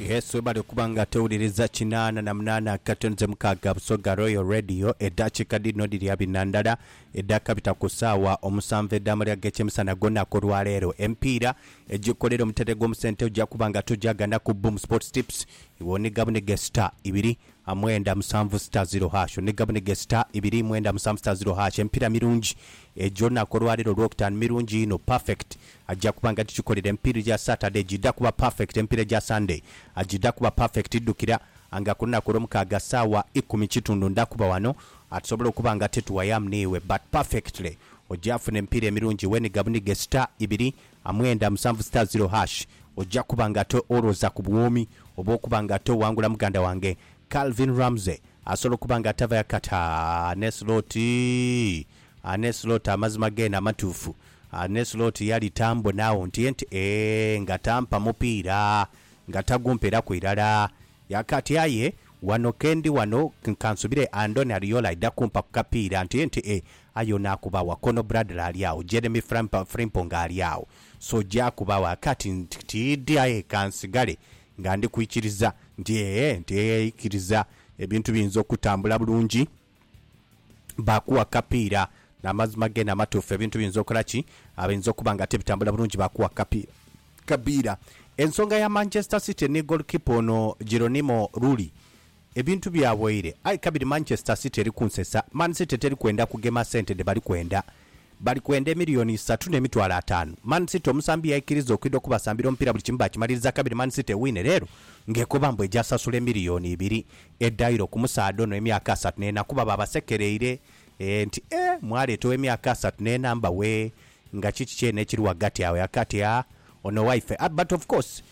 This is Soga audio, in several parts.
Yesu webale okuba nga tewuliriza kinaana na munaana katonze mukaaga Busoga Royal Radio edhakiika dhino dhiri abina ndala edhakabita ku saawa omusanvu edh'amalya g'ekyemisana gw'olunaku olwaleero. Emipiira egikolera omutendhe gw'omusente oja kuba nga togyaganaku Boom Sports Tips iwe oniga buniga esita ibiri a mwenda musanvu sita ziro hash ne gabune ge sita ibiri mwenda musanvu sita ziro hash emipira mirungi egyo naku olwalero olwokutanu mirungi inho perfect agya kuba nga gigikolera emipira egya Saturday gidha kuba perfect emipira egya Sunday agidha kuba perfect dhukira anga kulunaku olwomukaaga saawa ikumi kitundu ndha kuba wano atusobola okuba nga tetuwayamu niiwe but perfectly ogya funa emipira emirungi iwe ni gabune ge sita ibiri a mwenda musanvu star zero hash oja kuba nga to olwoza ku bwoomi obwokuba nga to wangula muganda wange Calvin Ramsey asobola okuba nga tava ya kata ne slot a ne slot amazima gene amatuufu a ne slot yali ta mbona agho nti enti eeh nga ta mpa mupiira nga ta gumperaku irala ya kati aye wano kendi wano nkansubire Andoni Ariola aidha kumpa ku kapiira nti enti eeh Aye ono akuba wa? Kono Bradley ali agho, Jeremy Frimp, Frimpong ali agho. So je akuba wa? Kati nti, tiidhi aye ka nsigale nga ndi kwikiriza nti, ee, nti, ee, ikiriza ebintu biyinza okutambula bulungi. Baakuwa kapiira. N'amazima geene amatuufu, ebintu biyinza okola ki? Abiyinza okuba nga tibitambula bulungi, baakuwa kapiira. Kapiira. Ensonga ya Manchester City ni goalkeeper ono Geronimo Rulli. Ebintu byawaire aye kabiri Manchester City eri kunsesa. Man City teri kwenda kugema sente dhe bali kwenda. Bali kwenda emiliyoni isatu n'emitwalo ataanu. Man City omusambi yaikiriza okwidha okubasambira omupiira buli kimu baakimaliriza kabiri Man City ewine leero ng'ekoba mbu eja sasula emiliyoni ibiri edhaire ku musaadha ono ow'emyaka asatu n'ena kuba baabasekereire nti, Eh, mwaleeta ow'emyaka asatu n'ena? Mbawe nga kiki kyene ekiri ghagati agho? Yakaati, Ah, ono waife. But of course,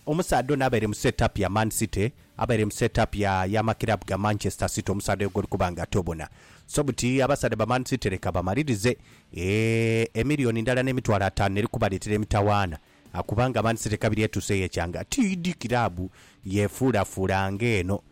Omusaadha ono abaire mu set up ya Man City, abaire mu set up ya y'amakiraabu ga Manchester City, omusaadha oyo gw'oli kuba nga tobona. So buti abasaadha ba Man City leka bamalirize eeh, emiliyoni ndala n'emitwalo ataanu n'eri kubaleetera emitawaana kubanga Man City kabiri etuuseeyo ekyanga. Tiidhi kiraabu yefuulafuula ng'eno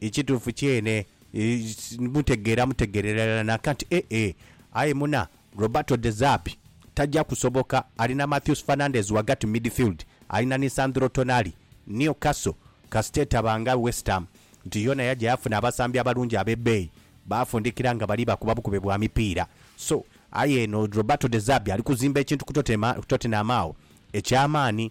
Ekituufu kyene, mutegeera mutegeerera irala nanka nti eh eh, aye muna Roberto De Zerbi taja kusoboka. Ali na Matheus Fernandes ghagati mu midfield, ali na Nisandro Tonali. Newcastle kasita etaba nga West Ham nti yoona yaja yafuna abasambi abalungi ab'ebbeeyi, baafundikira nga bali bakuba bukube bwa mipiira. So, aye eno Roberto De Zerbi ali kuzimba ekintu ku Tottenham agho eky'amaani.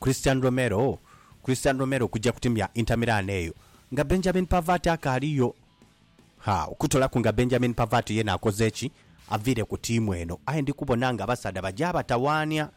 Christian Romero Christian Romero kuja kutimya Inter Milan eyo nga Benjamin Pavard akaaliyo? Ha, okutolaku nga Benjamin Pavard yena akoze ki, aviire ku tiimu eno. Aye ndi kubona nga abasaadha baja batawaania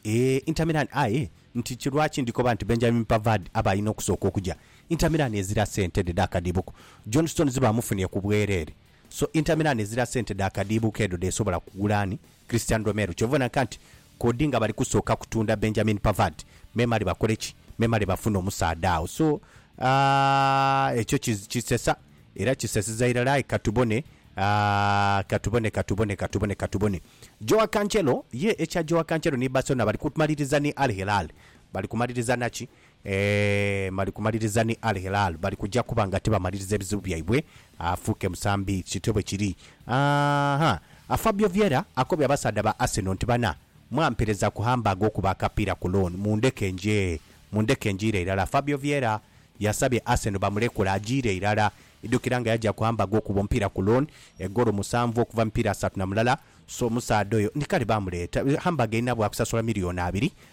eeh Inter Milan aye nti ki lwaki ndi koba nti Benjamin Pavard aba alina okusooka okuja? Inter Milan ezira sente dhe dha kadiibuko. John Stones baamufunie ku bwereere. So Inter Milan ezira sente dha kadiibuko edho dh'esobola kugula ani? Christian Romero. Kyova onanka nti Kodi nga bali kusooka kutunda Benjamin Pavard memale bakole ki? Memale bafune omusaadha agho. So, aah, ekyo ki, kisesa, era kisesiza irala. Aye ka tubone, aah, ka tubone, ka tubone, ka tubone, ka tubone. Joao Cancelo, ye, ekya Joao Cancelo ni Barcelona bali kumaliriza ni Al Hilal. Bali kumaliriza na ki? Eeh mali kumaliriza ni Al Hilal bali kuja kuba nga tibamaliriza ebizibu byaibwe afuuke musambi kityo bwekiri aahha a Fabio Vieira akobye abasaadha ba Arsenal nti bana mwampereza ku Hamburg okuba akapiira ku loan mundeke nje mundeke njiire irala Fabio Vieira yasabye Arsenal bamulekule ajiire irala idukira nga yaja ku Hamburg okuba omupiira ku loan egoolo musanvu okuva mu mipiira asatu na mulala so omusaadha oyo ni kale bamuleeta Hamburg erina bwakusasula million abiri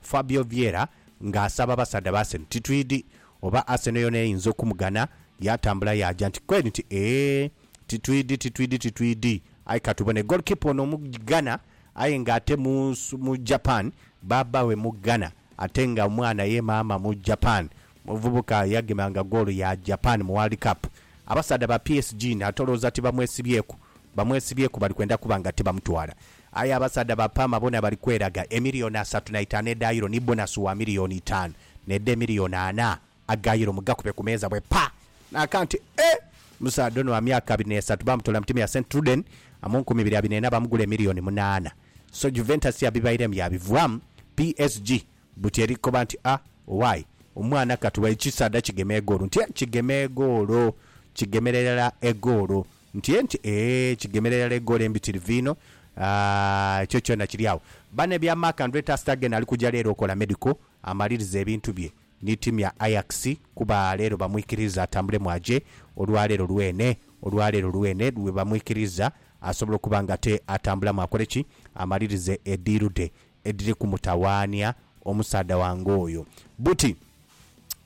Fabio Vieira nga asaba abasaadha ba Arsenal. Titwidhi oba Arsenal yoona eyinza okumugana. Yaatambula yaaja nti kweri nti, Eeh, titwidhi, titwidhi, titwidhi. Aye ka tubone. Goalkeeper ono Omughana aye nga ate mu, mu Japan. Bbaabba we Mughana ate nga omwana ye maama mu Japan. Muvubuka yagemanga goolo ya Japan mu World Cup. Abasaadha ba PSG ni atolooza ti bamwesibyeku. Bamwesibyeku bali kwenda kuba nga tibamutwala. Aye abasaadha ba Parma bona bali kweraga. Emiliyoni asatu na itaanu edha Euro ni bonasi wa miliyoni itaanu n'edh'emiliyoni ana aga Euro mugakube ku meeza bwe pa! N'akantu eh! Omusaadha ono wa myaka abiri n'esatu baamutoola mu tiimu ya St Truiden mu nkumi ibiri abiri n'ena baamugula emiliyoni munaana. So Juventus ya bibairemu yaabivwamu. PSG Buti eri kukoba nti, A, owaaye, omwana ka tuwe ekisaadha kigeme egoolo. Nti, E, kigeme egoolo. Kigemera irala egoolo. Nti, E, nti, Ee, kigemera irala egoolo embitirivu inho. A, ekyo kyona kiri agho. Bane bya Mark Andre ter Stegen ali kuja leero okola medical, amalirize ebintu bye ni tiimu ya Ajax kuba leero bamwikiriiza atambulemu aje olwa leero lwene, olwa leero lwene lwe bamwikiriiza asobola okuba nga ate atambulamu akole ki? Amalirize ediiru dhe. edhiri kumutawaania omusaadha wange oyo. Buti,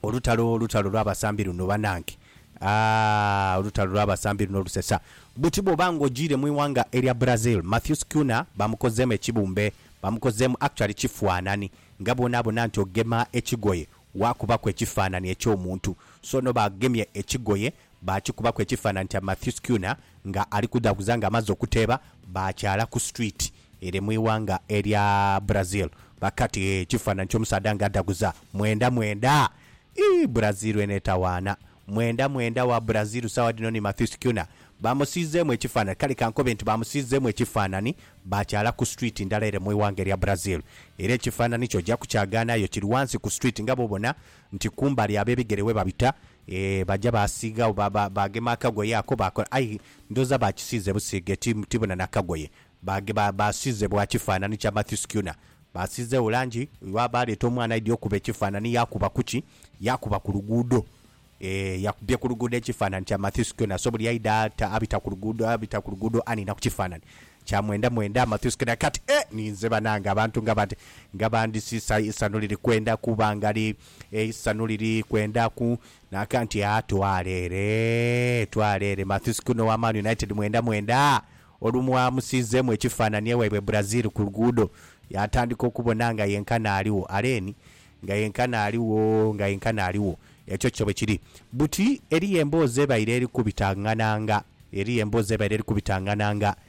Olutalo, olutalo lw'abasambi luno banange! Aah, olutalo lw'abasambi luno lusesa! Buti bw'oba nga ojiire mu ighanga erya Brazil, Matthews Cunha bamukozeemu ekibumbe, bamukozeemu actually kifuanani, nga bw'onaabona nti ogema ekigoye waakubaku ekifaanani eky'omuntu. So no baagemye ekigoye Baakikubaku ekifaananhi kya Matthew Skewner nga ali kudhaguza nga amaze okuteeba, baakyaala ku street ere mu ighanga erya Brazil. Bakati, Hee, ekifaananhi ky'omusaadha nga adhaguza, mwenda mwenda! Ii, Brazil eno etawaana! Mwenda mwenda wa Brazil saagha dhino ni Matthew Skewner. Baamusiizeemu ekifaananhi, kale ka nkobe nti baamusiizeemu ekifaananhi, baakyaala ku street ndala ere mu ighanga erya Brazil. Era ekifaananhi kyo oja kukyagaanaayo kiri ghansi ku street nga bw'obona nti kumbali ab'ebigere webabita, Eeh baja baasiigha ba ba baagema akagoye ako baakola aye ndhooza baakisiize busiige ti tibona na kagoye. Baage ba baasiize bwa kifaanani kya Matthew Schooner. Baasiizeegho langi lwa baaleeta omwana aidhi okuba ekifaanani yaakuba ku ki? Yaakuba ku luguudo. Eeh yakubye ku luguudo ekifaanani kya Matthew Schooner. So buli aidha ata abita ku luguudo abita ku luguudo aniina ku kifaanani kya mwenda mwenda Matthew Schooner. Kati eeh ninze banange abantu nga bati nga bandisiisa eisanhu liri kwenda kuba nga li Eisanhu liri kwendaku. Naaka nti, Aa, twala ere, twala ere. Mathis Cunha owa Man United mwenda mwenda olumwamusiizeemu ekifaananie waibwe Brazil ku luguudo, yaatandika okubona nga yenkana aligho. Aleni, nga yenkana aligho, nga yenkana aligho. Ekyo kyo bwe kiri. Buti, eriyo emboozi ebaire eri kubitangana nga, eriyo emboozi ebaire eri kubitangana nga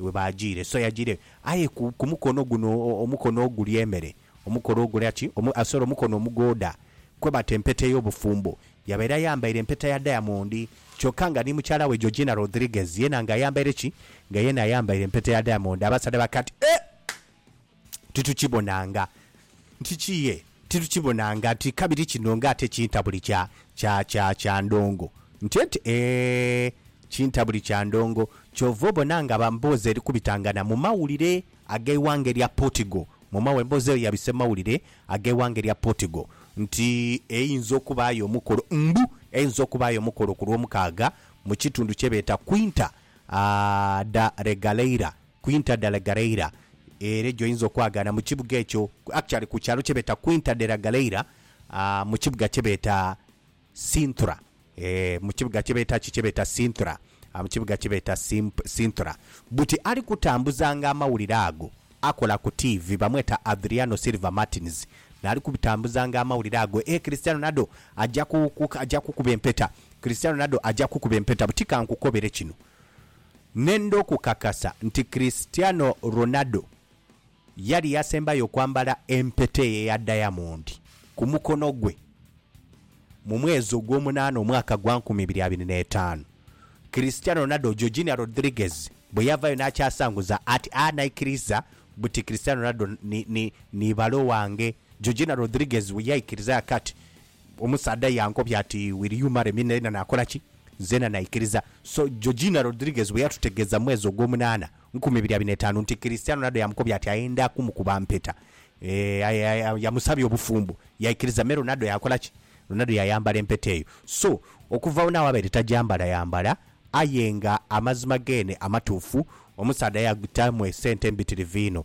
Iwe baajiire, so yajiire, aye ku, ku mukono guno, o, omukono ogulya emere, omukono ogulya ki? Omu, a, sorry, omukono omugooda, kwe bata empeta ey'obufumbo. Yabaire ayambaire empeta ya dayamondi, kyokka nga ni mukyala we Georgina Rodriguez, yeena nga ayambaire ki? Nga yeena ayambaire empeta ya dayamondi. Abasaadha bakaati, Eh! titukibonanga nti kiye, titukibonanga nti kabiri kino nga ate kintabuli kya, kya, kya, kya ndongo. Ntienti, Eeh, kintabuli kya ndongo. Kyova obona nga ba mboozi eri kubitangana mu mawulire ag'eighanga erya Portugal, mu mawu, emboozi eyo yabise mu mawulire ag'eighanga erya Portugal, nti eyinza okubaayo omukolo, mbu eyinza okubaayo omukolo ku Lwomukaaga mu kitundu kye beeta Quinta, ah, da Regaleira, Quinta de la Galleira, ere gyoyinza okwagaana mu kibuga ekyo, actually ku kyalo kyebeeta Quinta de la Galleira mu kibuga kyebeeta Sintra, mu kibuga kyebeeta ki? Kyebeeta Sintra, mu kibuga kyebeeta Sintra. Buti ali kutambuzanga amawulire ago, akola ku tiivi, bamweta Adriano Silva Martins, naali kubitambuzanga amawulire ago, Eeh Cristiano Ronaldo aja kukuba empeta, Cristiano Ronaldo aja kukuba empeta. Buti kankukobere kino. Nenda okukakasa nti Cristiano Ronaldo yali yasembayo okwambala empeta eyo eya dayamondi ku mukono gwe mu mwezi ogw'omunaana omwaka gwa nkumi ibiri abiri n'etaanu. Cristiano Ronaldo, Georgina Rodriguez bwe yavayo n'akyasanguza ati, A naikiriza buti Cristiano Ronaldo ni, ni, ni bale owange. Georgina Rodriguez bwe yaikiriza ghaka ati, Omusaadha yankobya ati, Will you marry me? Nalina nakola ki? Nzena naikiriza. So, Georgina Rodriguez bwe yatutegeeza mu mwezi ogw'omunaana nkumi ibiri abiri n'etaanu nti Cristiano Ronaldo yamukobya ati ayenda kumukuba mpeta, eeh, yamusabya obufumbo, yaikiriza. Me, Ronaldo yakola ki? Ronaldo yayambala empeta eyo. So, okuva agho n'agho abaire tagyambalayambala. Aye nga amazima geene amatuufu, omusaadha yagitamu esente mbitirivu inho.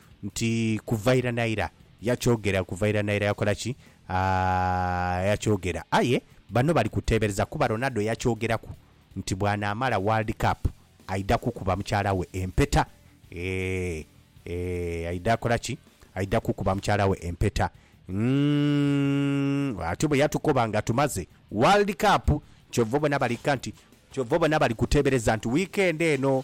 Nti kuva ira na ira. Yakyogera kuva ira na ira yakola ki? Aaa, yakyogera. Aye bano bali kuteebereza kuba Ronaldo yakyogeraku nti bw'anaamala World Cup aidha kukuba mukyala we empeta. Eeh, eeh, aidha kola ki? Aidha kukuba mukyala we empeta. Umm, atyo bwe yatukoba nga tumaze World Cup. Kyova obona bali kuka nti, kyova obona bali kuteebereza nti wiikendi eno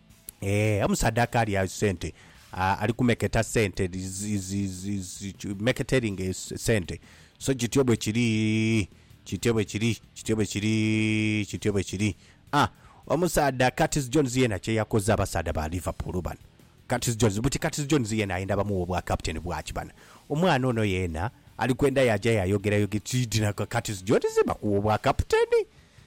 Eeh omusadha kali a sente ali kumeketa sente meketeringa sente so kityo bwekiri kityo bwekiri kityo bwekiri kityo bwekiri aah omusadha Curtis Jones yena kyeyakoze abasadha ba Liverpool bano Curtis Jones buti Curtis Jones yena ayenda bamuwe obwa captain bwaki bana omwana ono yena alikwenda yaja yayogera yogera tidhi na Curtis Jones bakuwa obwa captain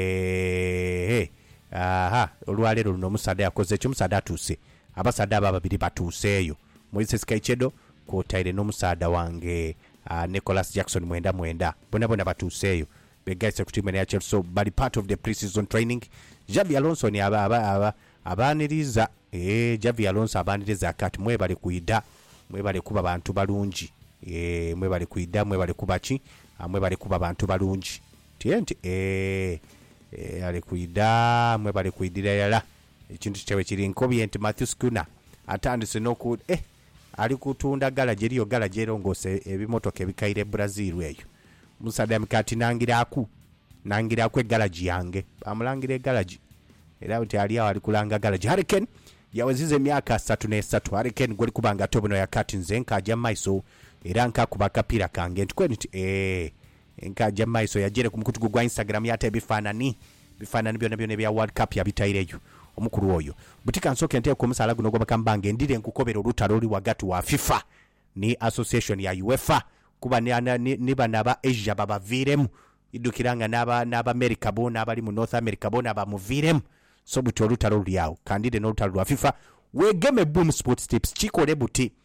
Eehhe! Aha! Olwaleero luno omusaadha yakoze ki? Omusaadha atuuse. Abasaadha abo ababiri batuuseeyo. Moises Kaichedo kwotaire n'omusaadha wange Nicholas Jackson Mwenda Mwenda boonaboona batuuseeyo. Begaise ku tiimu eno eya Chelsea bali part of the pre-season training. Xabi Alonso ni aba, aba, aba, abaaniriza. Eeh, Xavi Alonso abaaniriza ati ati mwebale kwidha, mwebale kuba bantu balungi. Eeh, mwebale kwidha, mwebale kuba ki? Mwebale kuba bantu balungi. Tye nti, Eeh, eeh, ali kwidha, mwe bali kwidhira irala. Ekintu kyaibwe kiri nkobye nti Matthew Schooner atandise n'oku, eh, ali kutunda galaji, eriyo galaji erongoosa ebimotoka ebikaire e Brazil eyo. Omusaadha yamika ati, Nangiraku, nangiraku egalaji yange. Baamulangira egalaji. Era nti ali agho ali kulanga galaji. Harry Kane yaweziza emyaka asatu n'esatu. Harry Kane gw'oli kuba nga tobonoya kati, nze nkaaja mu maiso era nkaakuba akapiira kange nti kweni nti, Eeh, Enkaaja mu maiso yajaire ku mukutu gwe ogwa Instagram yaata ebifaanani. Ebifaanani byonabyona ebya World Cup yabitaireyo. Omukulu oyo. Buti ka nsooke nteeke omusaala guno ogwa Bakambange ndhire nkukobere olutalo oluli ghagati wa FIFA ni Association ya UEFA kuba ni bano aba Asia babaviiremu. Idhukira nga n'Abamerica boona abali mu North America boona bamuviiremu. So buti olutalo luli agho. Ka ndhire n'olutalo lwa FIFA. Weegeme Boom Sports Tips kikole buti.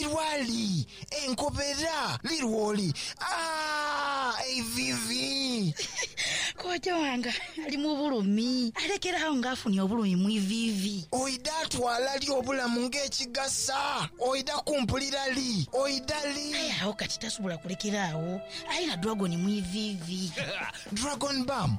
Iwali, enkobera, lirwoli, aah, eiviivi. Kojja wange ali mu bulumi, alekere agho nga afunye obulumi mu iviivi. Oidha twala li obulamu ng'ekigasa? Oidha kumpulira li? Oidha li? Aye agho kati tasobola kulekera agho, aye na dragon mu iviivi. Dragon Bam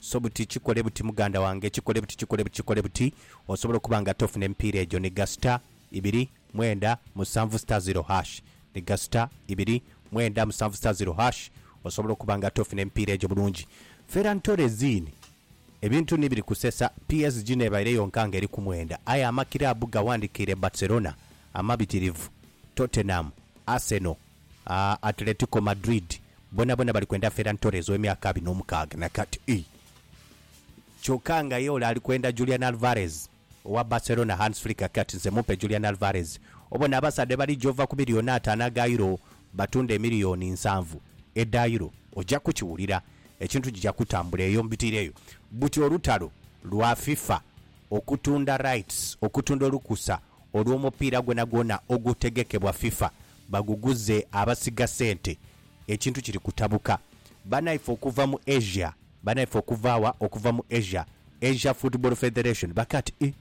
So buti, kikole buti muganda wange, kikole buti, kikole buti, kikole buti, osobola okuba nga ate ofuna emipiira egyo. Ni gasita, ibiri, mwenda, musanvu sita ziro hash. Ni gasita, ibiri, mwenda, musanvu sita ziro hash, osobola okuba nga ate ofuna emipiira egyo bulungi. Ferran Torres in, Ebintu ni biri kusesa, PSG n'ebaire yonka nga eri ku mwenda, aye amakiraabu gawandikiire Barcelona amabitirivu, Tottenham, Arsenal, Atletico Madrid bonabona bali kwenda Ferran Torres ow'emyaka abiri n'omukaaga na kati ii, kyoka nga ye ole ali kwenda Julian Alvarez owa Barcelona. Hans Flick aghika ati, Nze mumpe Julian Alvarez. Obona abasaadha bwebaliija ova ku miliyooni ataano aga Euro batunde emiliyooni nsanvu edha Euro, oja kukiwulira. Ekintu kija kutambula eyo mu bitiiro eyo. Buti olutalo lwa FIFA okutunda rights, okutunda olukusa olw'omupiira gwonagwona ogutegekebwa FIFA baguguze abasiga sente ekintu kiri kutabuka banaife okuva mu Asia banaife okuva wa okuva mu Asia Asia football federation bakati ii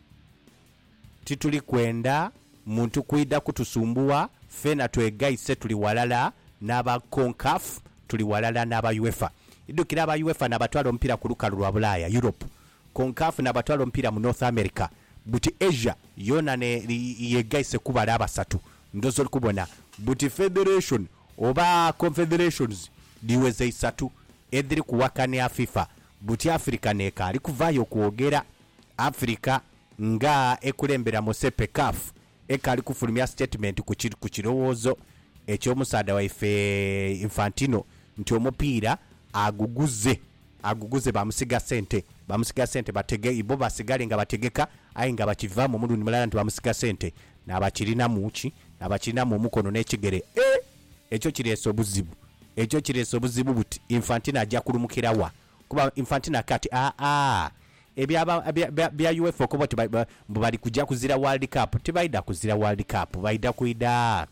tituli kwenda muntu kwidha kutusumbugha feena twegaise tuli walala naba Concaf tuli walala naba UEFA idhukira aba UEFA nabatwala omupira kulukalu lwa bulaaya Europe Concaf n'abatwala omupiira mu North America buti Asia yoona n'eyegaise kubala abasatu ndhoozi oli kubona buti federation oba confederations dhiweza isatu edhiri kuwakania FIFA buti Africa n'ekaali kuvaayo kwogera. Africa nga ekulembera mu CPCAF Eka ali kufulumya sitatimenti ku kirowoozo eky'omusaadha waife Infantino nti omupiira aguguze aguguze baamusiga sente baamusiga sente batege ibo basigale nga bategeka aye nga bakivaamu omulundi mulala nti baamusiga sente naabakirinamu ki? naabakirinamu omukono n'ekigere eeh! Ekyo kireese obuzibu ekyo kireese obuzibu buti Infantino aja kulumukira wa? Kuba Infantino akake ati, Aa, ebya ba, bya, bya, bya UEFA okoba oti ba, ba, mbu bali kuja kuzira World Cup. Tibaidha kuzira World Cup. Baidha kwidha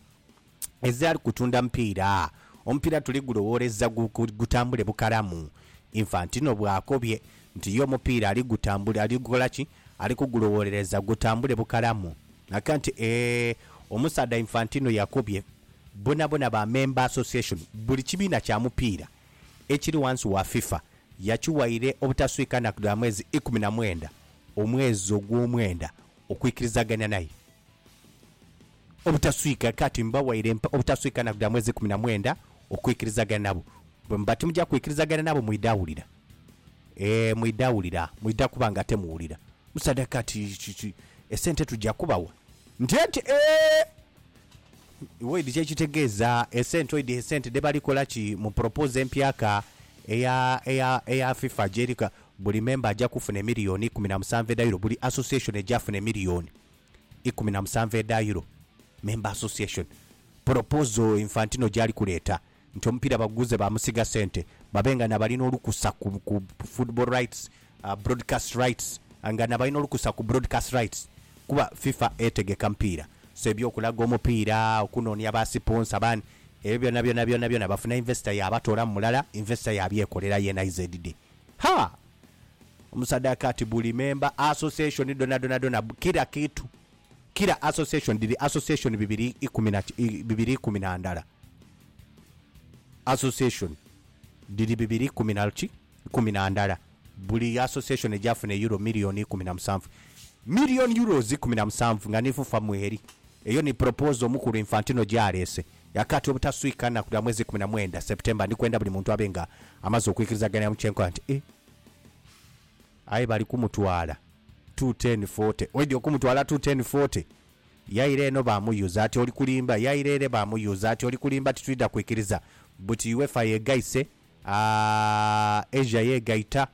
ezali kutunda mupiira. Omupiira tuli gulowooleza gu, gu, gutambule bukalamu. Infantino bw'akobye nti ye omupiira ali gutambuli, ali gukola ki? Ali kugulowoolereza gutambule bukalamu. Akake nti, Ee, omusaadha Infantino yakobye bonabona ba member association, buli kibiina kya mupiira, ekiri ghansi wa FIFA yakiwaire obutaswika nnaku dha mwezi ikumi na mwenda, omwezi ogwomwenda, okwikirizagania naye. Obutaswika, kati mbawaire obutaswika nnaku dha mwezi ikumi na mwenda okwikirizagania nabo. Bwe muba timuja kwikirizagania nabo mwidha wulira. Ee, mwidha wulira. Mwidha kuba nga temuwulira. Omusaadha kati, Esente tuja kubawa? Nti enti, Ee! Oid kyekitegeeza esente oid esente dhebali kola ki mu propose empyaka eya eya eya fifa gyeri ka buli member aja kufuna emiliyoni ikumi na musanvu edha euro buli association eja funa emiliyoni ikumi na musanvu edha euro member association proposal infantino gyali kuleeta. nti omupiira baguguze baamusiga sente babe nga nabalina olukusa ku ku football rights, broadcast rights nga nabalina olukusa ku broadcast rights kuba FIFA etegeka mupiira so ebyokulaga omupiira, okunonia ba siponsa bani ebyo byona byona byona byona bafuna investor yabatoolamu mulala investor yabyekolera yeena izz. Haa! Omusadha kati buli member association dhonadhona dhona kirakitu Kira association dhiri association bibiri ikumi na bibiri ikumi na ndala. Association dhiri bibiri ikumi na ki ikumi na ndala. Buli association egyafuna euro million ikumi na musanvu. Million euros ikumi na musanvu nga ni fufa mweri. Eyo ni proposal omukulu Infantino gyaleese. Yakaati obutaswika nnaku dha mwezi ikumi na mwenda, September, ndikwenda buli muntu abe nga amaze okwikirizaganira mu kyenkola nti, e. Aye bali kumutwala tu ten forty. Waidhi okumutwala tu ten forty. Yaire eno bamuyuza ati oli kulimba, yaire ere bamuyuza ati oli kulimba titwidha kwikiriza buti UEFA yegaise aah Asia yegaita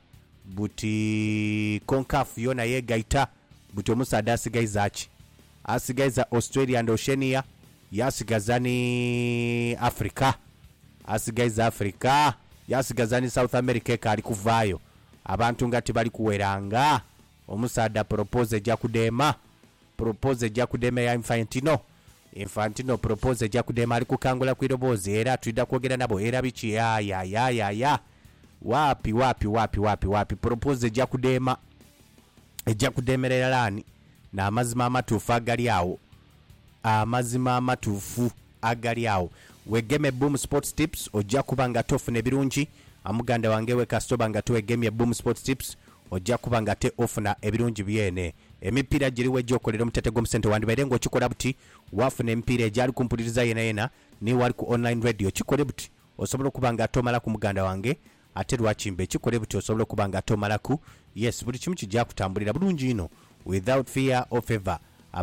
buti Concaf yona yegaita buti omusaadha asigaiza ki? Asigaiza Australia and Oceania yasigaza ni Africa asigaiza Africa yasigaza ni South America ekaali kuvaayo Abantu nga tibali kuwera nga omusaadha propose eja kudema propose eja kudema eya Infantino Infantino propose eja kudema ali kukangula ku iroboozi era twidha kwogera nabo era biki Yaayayaayaya Waapi waapi waapi waapi waapi propose eja kudema Eja kudemera irala Ani n'amazima amatuufu agali agho Amazima amatuufu. agali agho. Wegeme Boom Sports Tips oja kuba nga tofune birungi. A Muganda wange we kasita oba nga tiwegemye Boom Sports Tips oja kuba nga te ofuna ebirungi byene. Emipiira giri we gyokolera omuteete gw'omusente wandibaire nga okikola buti wafuna emipiira egyali ku mpuliriza yenayena ni wali ku online radio kikole buti osobola okuba nga tomalaku muganda wange Ate lwaki mba ekikole buti osobola okuba nga tomalaku yes buli kimu kija kutambulira bulungi inho without fear or favour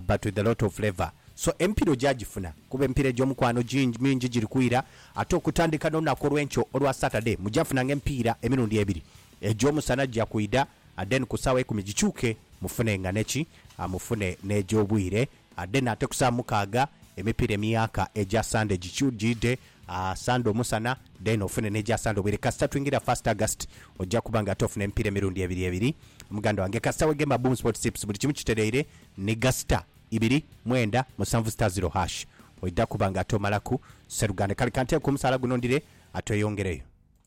but with a lot of flavour so emipira oja jifuna kuba emipira ejomukwano gingi mingi giri kwira ate okutandika nolunaku olwenkyo olwa Saturday muja funanga emipiira emirundi ebiri ejomusana gija kwida then kusawa ikumi gikyuke mufune nga neki mufune nejobwire Adena ate ku saa mukaaga emipiira emyaka egya Sande gikyujiidhe, Sande omusana then ofune n'egya Sande obwire. Kasita twingira first August oja kuba nga ate ofuna emipiira emirundi ebiri ebiri muganda wange. Kasita weghemba Boom Sports Tips buli kimu kitereire ni gasita ibiri mwenda musanvu star zero hash oidha kuba nga ate omalaku. Sseruganda kale kanteeku omusaala guno ndire ate oyongereyo.